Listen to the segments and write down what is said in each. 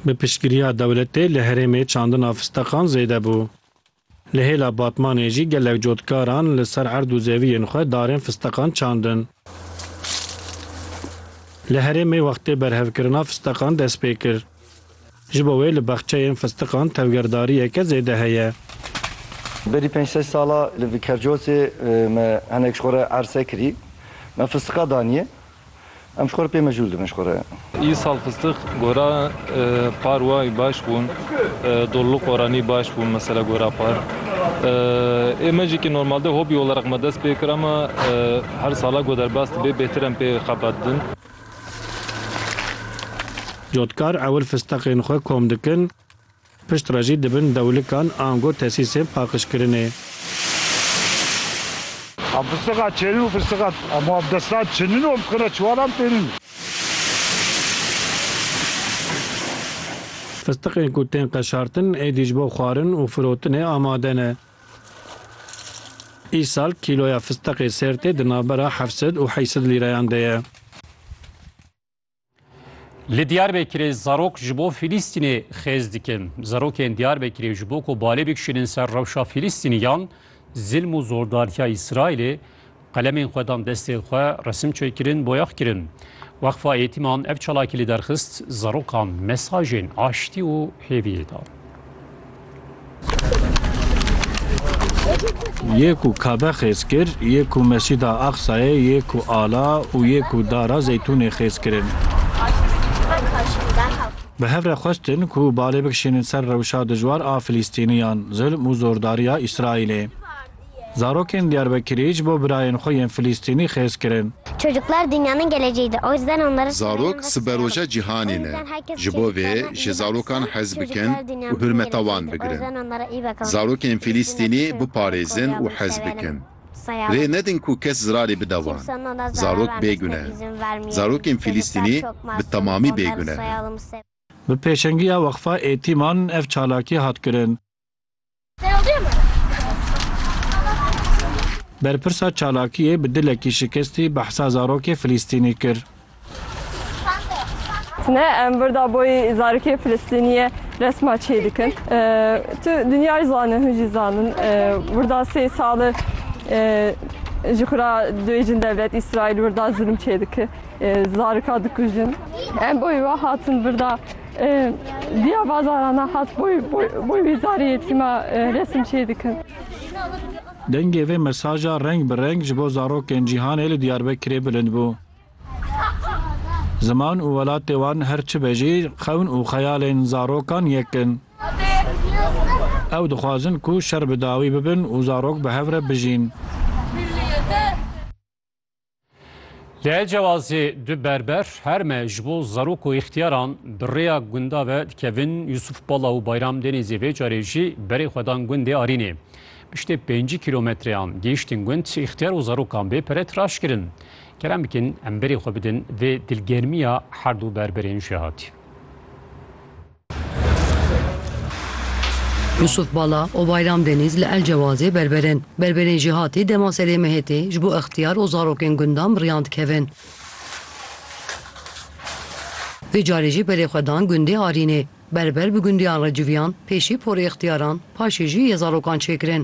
Bi piştgiriya dewletê li herêmê çandina fisteqan zêde bû. Li hêla Batmanê jî gelek cotkaran li ser erd û zeviyên xwe darên fisteqan çandin. Li herêmê wextê berhevkirina fisteqan dest pê kir. Ji bo wê li baxçeyên fistiqan tevgerdariyeke zêde heye. Berî pênc sed sala li Vikercosê me hinek ji xwe re erse kirî. Me fistiqa daniye. Em ji xwe re pê mecûl dibin ji xwe re. Îsal fistiq gora par wayî baş bûn. Dollu qoranî baş bûn mesela gora par. Ê me jî ki normalde hobî oleraq me dest pê kir ama her sala ku derbas dibe bêhtir em pê xebat dibin. Cotkar ewil fisteqên xwe kom dikin, pişt re jî dibin dewlikan ango tesîsên paqijkirinê. Em fisteqa çênin û fisteqa hemû ev destan çinin û em qina çiwalan tênin. Fisteqên ku tên qeşartin êdî ji bo xwarin û firotinê amade ne. Îsal kîloya fisteqê sêrtê di navbera heft sed û heyş sed lîreyan de ye. Li Diyarbekirê zarok ji bo Fîlîstînê xêz dikin. Zarokên Diyarbekirê ji bo ku balê bikişînin ser rewşa Fîlîstîniyan, zilm û zordariya Îsraîlê Qelemên xwe dan destê xwe, resim çêkirin, boyax kirin. Weqfa Yetîman ev çalakî li derxist, zarokan mesajên aştî û hêviyê da. Yê ku Kabe xêz kir, yê ku Mescîda Aqsayê yê ku ala û yê ku Dara Zeytûnê xêz kirin. Bi hev re xwestin ku balê bikişînin ser rewşa dijwar a Filîstîniyan, zilm û zordariya Îsraîlê. Zarokên Diyarbekirî ji bo birayên xwe yên Filîstînî xêz kirin. Çocuklar dünyanın geleceğidir. O yüzden onları Zarok siberoja cîhanê ne. Ji bo vê ji zarokan hez bikin û hurmeta wan bigirin. Zarokên Filîstînî biparêzin û hez bikin. Rê nedin ku kes zirarê bide wan. Zarok bêgune in. Zarokên Filîstînî bi temamî bêgune in. Bi pêşengiya Weqfa Êtîman ev çalakî hat kirin. Berpirsa çalakiyê bi dilekî şikestî behsa zarokê Filîstînî kir. Ne em birda boyî zarokê Filîstîniyê resma çê dikin. Tu dinyayê zanin, hûn jî zanin. Birda sê sali ji xwe re duyêjin dewlet Îsraîl birda zilm çê dike. Zarika dikujin. Em boyî we hatin birda. Diya bazaran a hat boy boy wî zarê yetîma resim çê dikin. Dengê vê mesaja reng bi reng ji bo zarokên cîhanê li Diyarbekirê bilind bû. Ziman û welatê wan her çi be jî xewn û xeyalên zarokan yek in. Ew dixwazin ku şer bi dawî bibin û zarok bi hev re bijîn. Lê cewazê du berber her me ji bo zarok û îxtiyaran bi rêya gunda ve dikevin Yusuf Bala û Bayram Denêzê vê carê jî berê xwe dan gundê Arînê. Piştê pêncî kîlometreyan gihiştin gund îxtiyar û zarokan bê pere tiraş kirin. Kerem bikin em berê xwe bidin vê dilgermiya herdu berberên jêhatî. Yusuf Bala û Bayram Denîz li El Cewazê berber in. Berberên jêhatî dema serê Mihêtê ji bo ixtiyar û zarokên gundan bi riyan dikevin. Vê carê jî berê xwe dan gundê Arînê. Berber bi gundiyan re civiyan, pêşî porê ixtiyaran, paşê jî yê zarokan çêkirin.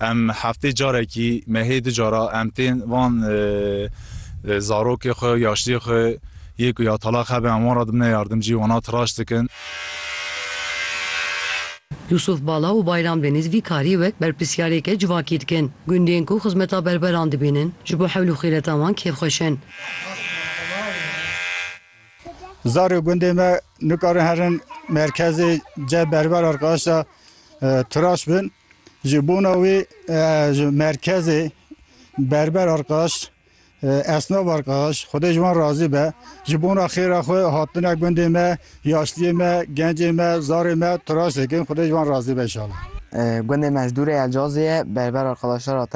Em heftê carekî mehê du cara em tên van zarokê xwe û yaştiyê xwe yê ku ya talaq hebe em wan re dibine yardim cî wana tiraş dikin. Yûsûf Bala û Bayram Deniz vî karî wek berpirsiyarêke civakî dikin. Gundên ku xizmeta berberan dibînin ji bo hewl û xîreta wan kêfxweş in. Zarê gundê me nikarin herin merkezê cem berber arkaşa tiraş bin. Ji bona wê ji merkezê berber arkaş, esnaf arkaş Xwedê ji wan razî be ji bona xêra xwe hatine gundê me, yaşliyê me, gencê me, zarê me tiraşê kirin Xwedê ji wan razî be inşallah. Gundê me ji dûrê Elcazê ye berber arkaşlar hatine.